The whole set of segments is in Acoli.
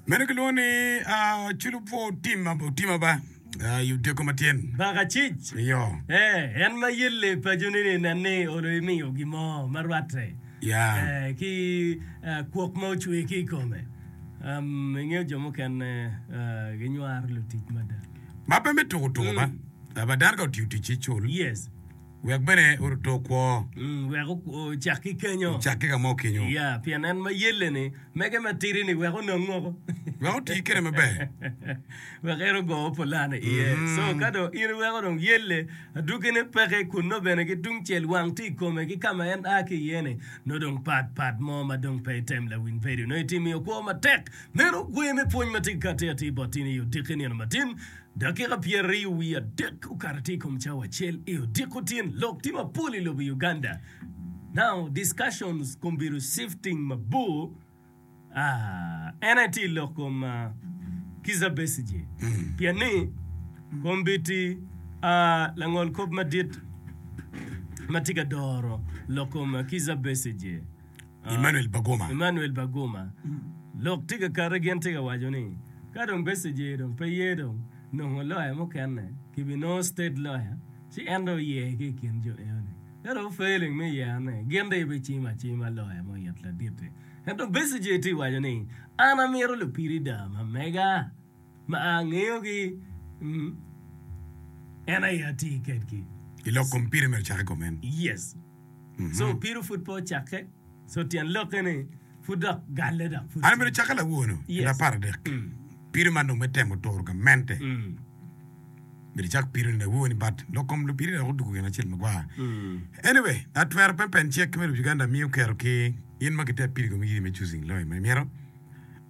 Meno kilwongo ni ah, culu po otima otima ba ah, i otyeko matyen. Baka cic. Iyo. Eh, en ma yelle pacone ni nen ni olo imiyo gin mo ma rwatte Ya. eh, ki eh, kwok ma ocwe ki i kome. Um, ingeyo jo mukene eh, ginywaro lutic mada. Ma pe me tuko tuko ba. Ah, ba dano ka otiyo ticce cul. Yes. Wek bene oruto okwo. Wek ocak ki kenyo. Ocak ki ka mo kenyo. Ya, pien en ma yelle-ni. Mege matidi-ni wek onong ngo? Wek oti kwede maber. Wek en ogo opolane iye. So, ka dong in iweko dong yelle, adwogine peke kunnu bene ki tungcel wang tye i kome ki ka ma en a ki iye-ni, nongo dong pat pat mo ma dong pe item lawiny bedo. Nongo itimo i okwo matek. Meno gwe me pwony ma tika atika atir bot in i odiki nino matin. Dakika pyeraryo wiye adek okato tye i kom cawa acel i odiko tyen lok tye mapol i lobo Uganda now discussions kombido shifting mabor aah en aye tye lok kom Kizza Besigye pien ni kombiti aah langol kop madit matye ka doro lok kom Kizza Besigye. Emmanuel Bagoma. Emmanuel Bagoma. Lok tye ka kati gin tye ka waco ni ka dong Besigye dong pe ye dong nongo loya mukene ki bi nongo state loya ci en dong oye ki ikin jo eno ni. Ka dong failing me yer ne gin dong ibi cimo acima loya mo it laditi. Ento Besigye tye waco ni an amito lupiri daa ma mega. ma angeyogi, en aye ati kedgi. I lok kom pire myero ocakke kome en. Yes. So pire pud pe ocakke. So tyen lokke ni pud dok galle dok pud. An abedo cakke lawono i lapar adek. Pire man dong me temo turo gamente. Myero icak pire ni lawoni but lok kom lupiri dok odugo gin acel magwar. Anyway, atwero pempen cek ki me Lobo Uganda miyo kero ki in ma giter piri kome giri me choosing lawyer ma imito.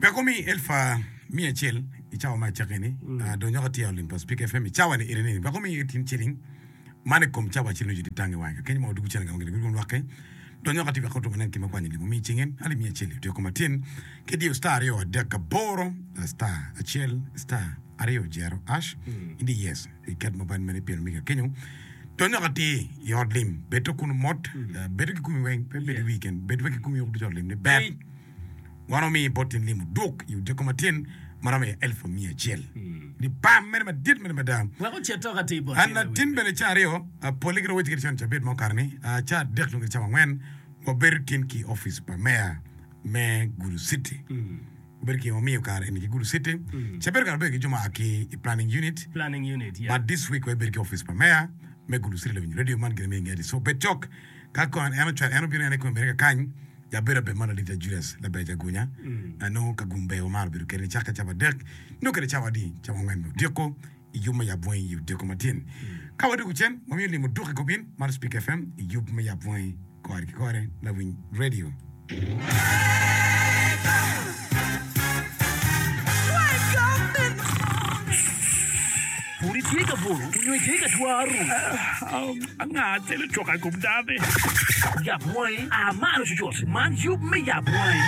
Peko me elfu miya acel i cawa ma acakki-ni, adonyo ka tye i ot lim pa Cpika FM i cawa-ni iri ni, peko miya tin ciling man i kom cawa acel nyo cudi tang i wange kakeny ma odwogo cene gamo gin gurwom lwakke. Donyo ka tye wek otum aneno kit ma kwanyo lim omiyo i cinge, alip miya acel-li otiyo koma tin ki diyo star aryo adek aboro star acel star aryo jero ash i di yes i ket mobile money pin omiga kenyo. Donyo ka tye i ot lim, bedo kunu mot, bedo ki kumi weng, pe bedo i wi keken, bedo wek i kumi wek ducu i ot lim ni ber. Wan wamiyo bot in limo duk i odiko matyen ma romo iye elfu miya acel. Ni pam mene madit mene mada! Wek ocit tok atir bot An latin bene ca aryo, polle giromo wacci kadi cone cabit mo kare-ni, ca adek nyo kadi cawa angwen, wabedo tin ki i opic pa meya me Gulu City. Wabedo ki, wamiyo kare eni ki Gulu City. Ca bedo kare wabedo ki jo ma a ki i Planning Unit. Planning Unit, yeah. But this week wabedo ki opic pa meya me Gulu City lawinyo radio man gire me Ingeti. So bed cok, ka kong en, en ocwalo, en obino en i kong America kany, Ja bedo abedo man adita Judas laber jagunya na nongo ka gum ber wamaro bedo kede ni cakke cawa adek nio kede cawa adi cawa angwen me odiko i yub me yab bwangi i odiko matin ka wadoko cen wamiyo limo duk i gobin mar Speaker FM i yub me yab bwangi kore ki kore lawiny radio. Pud itye ka bolo onyo itye ka twaro? Anga acel ocoka i kom dano-ni? Yab wangi, a malo cucut, man yub me yab wangi.